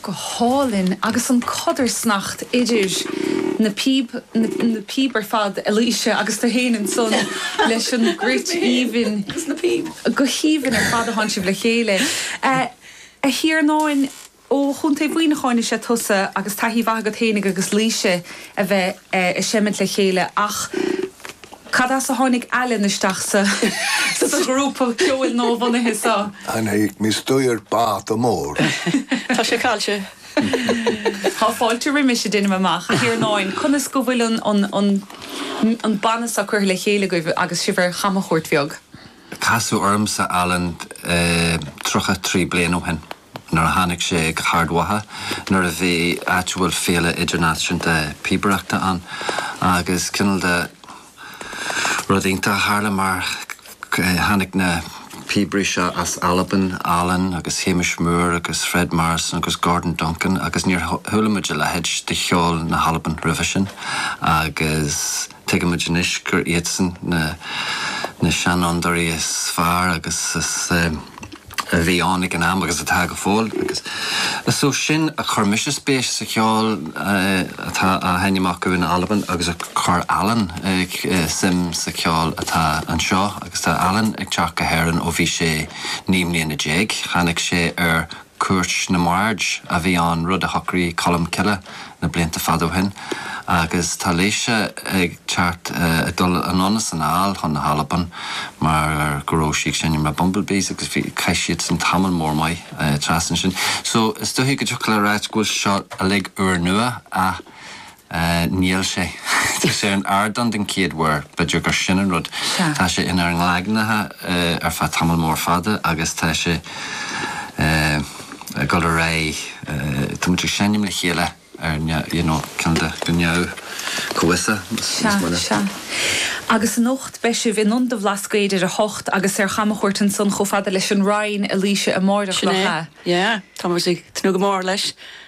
go hálainn agus an chodarsnacht idir na píob na píob ar fad a Laoise agus tú fhéin ansan leis an gcruit aoibhinn agus na píob go haoibhinn ar fad a sheinn sibh le chéile a Thiarnáin ó chontae Mhuineacháin is ea tusa agus taithí mhaith agat fhéinig agus ag Laoise a bheith ag seimint le chéile ach cad as a tháinig Alan isteach sa sa ghrúpa ceoil nuabhunaithe so? Níos déanaí, is dócha. Tá fáilte, Tá fáilte roimis, deinim amach. A Thiarnáin, conas go bhfuil an an an an banna so curtha le chéile agaibh agus sibh ar chamchuairt bheag? Casadh ormsa Alan tríocha trí bliain ó shin. Nuair a tháinig sé go hArd Mhacha, nuair a bhí, áit a bhfuil féile idirnáisiúnta píobaireachta ann agus cineál de rud iontach a tharla mar tháinig na píobairí seo as Albain, Alan agus Hamish Moore agus Fred Morrison agus Gordon Duncan agus níor chuala muid a leithéid de cheol na hAlban roimhe sin agus Tuigimid anois gur iadsan na seanfhondúirí is fearr a bhí ann ag an am agus atá go fóill. Is ó sin a chuir mise spéis sa cheol atá á sheinm acu in Albain agus a chuir Alan suim sa cheol atá anseo agus tá Alan ag teacht go hÉirinn ó bhí sé naoi mbliana déag. Tháinig sé ar Chuairt na mBard a bhí ann, rud a shocraigh Colm Cille na blianta fada ó shin, agus tá Laoise ag teacht ag dul anonn is anall chun na hAlban mar go raibh sí ag seinm leis na Bumble Bees agus bhí, chaith siadsan tamall mór maith trasna ansin. So, is dóiche go dtiocfadh le ráit go bhfuil seo uilig úrnua ach Níl sé. Tá sé ar an ardán den chéad uair. B'fheidir gur sin an rud. Tá sé inár ngleagnaithe ar feadh tamall mór fada agus tá sé ag dul ar aghaidh. Tá muid ag seinm le chéile ar you know ceann de go neamh fhoirmiúil níos moille. Sea. Sea. Agus anocht beidh sibh in Ionad an Bhlascaoid ar a hocht agus ar chamachuairt ansan chomh fada leis an Rinn a Laoise, amáireach, Sin é. nach ea? Yeah. Tá muid ag tnúth go mór leis.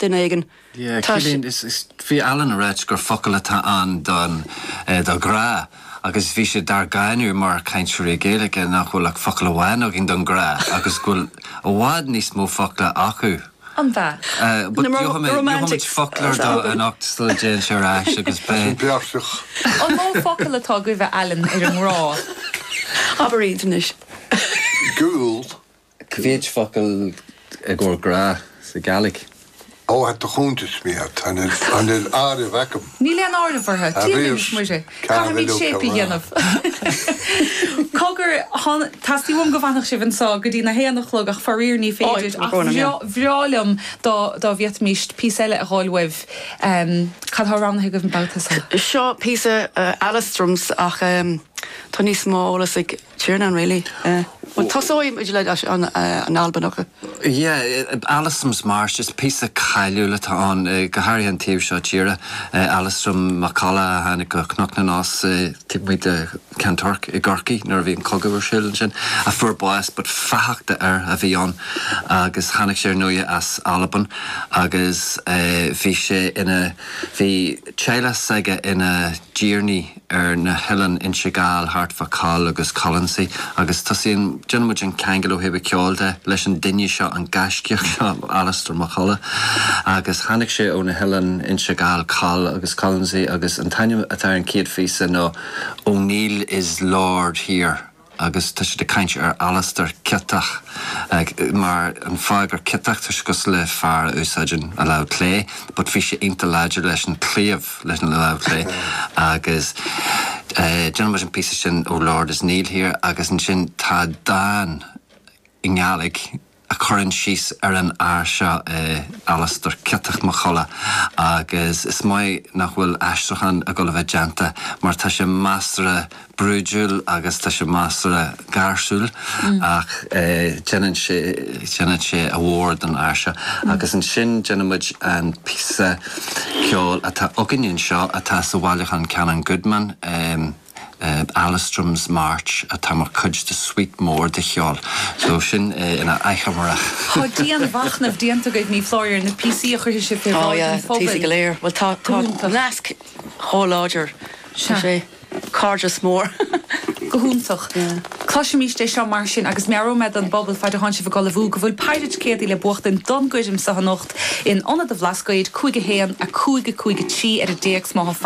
duine éigin. Yeah, Tá sé. Cillín, is, is, bhí Alan a' ráit gur focal eile atá ann don, eh, do ghrá agus bhí sé dár gcáineadh mar chainteoirí Gaeilge nach bhfuil ach focal amháin againn don ghrá agus go bhfuil i bhfad níos mó focla acu. An bhfeá? Eh, Na but gheobha mé, gheobha muid romantics, an foclóir dó anocht sula dtéann sé ar ais agus Tá beidh. sin beartrach. An mó focal atá agaibh, a Alan, ar an ngrá? Abair iad anois. Gaol. Cé mhéad focal i gcomhair grá sa Ghaeilge. Ó a do chúntais miat, an bhfuil áireamh aicim? Níl aon áireamh orthu, Dia linn is Muire, caithfimid séipe a dhéanamh. Cogar, teastaíonn uaim go bhfanfadh sibh anseo go dtí na haon a chlog ach faraor ní féidir ach bhreá liom dá bhféadfaimist píosa eile a dh'fháil uaibh. Cad tá roghnaithe agaibh an babhta seo? Seo píosa Alestroms ach tá níos mó eolas ag. Tiarnán really eh. Bhuel tosóidh muid le an Albanach. Yeah Alasdrums March is píosa cáiliúil atá ann go háirithe an taobh seo tíre. Alastar Mac Colla a tháinig go Cnoc na nOs taobh amuigh de Ceann Toirc i gCorcaigh nuair a bhí an cogadh ar siúl ansin a fuair bás but fathach d'fhear a bhí ann agus tháinig sé ar ndóighe as Albain agus eh bhí sé ina bhí teaghlach s'aige ina dtiarnaí ar na hoileáin Inse Gall thart fá Coll agus Colonsay agus tosaíonn, déanann muid an ceangal ó thaobh a cheoil de leis an duine seo, an gaiscíoch seo, Alastar Mac Colla agus tháinig sé ó na hoileáin Inse Gall, Coll agus Colonsay agus an t-ainm atá ar an chéad phíosa ná O'Neill is Lord here. Agus tá siad ag caint ar Alastair Ciotach mar an fáth gur ciotach toisc gur le fear a úsáideann a lámh chlé but bhí sé iontach láidir leis an claíomh leis an lámh chlé agus déanann muid an píosa sin ó Lord is Neil here agus ansin tá dán i nGaeilge a chuireann síos ar an fhear seo, Alastar, Ciotach Mac Colla, agus is maith nach bhfuil aistriúchán ag dul a bheith déanta mar tá sé measartha brúidiúil agus tá sé measartha gáirsiúil ach déanann sé, déanann sé a mhór don fhear seo agus ansin déanann muid an píosa ceoil atá againn anseo atá sa bhailiúchán Canon Goodman. Alasdrums March atá mar chuid de suite mór de cheol so sin é ina achoimre. Tá dianmhachnamh déanta agaibh ní foláir ar na píosaí a chuirfidh sibh fé bhráid an phobail go hiontach. Cloisimíst é seo mar sin agus meabhróidh mé don bpobal faid a thánn sibh ag ullmhú go bhfuil péire ticéadaí le buachtaint don gcoirm so anocht in Ionad an Bhlascaoid, cúig a haon, a cúig, a cúig a trí ar an dtéacs. Má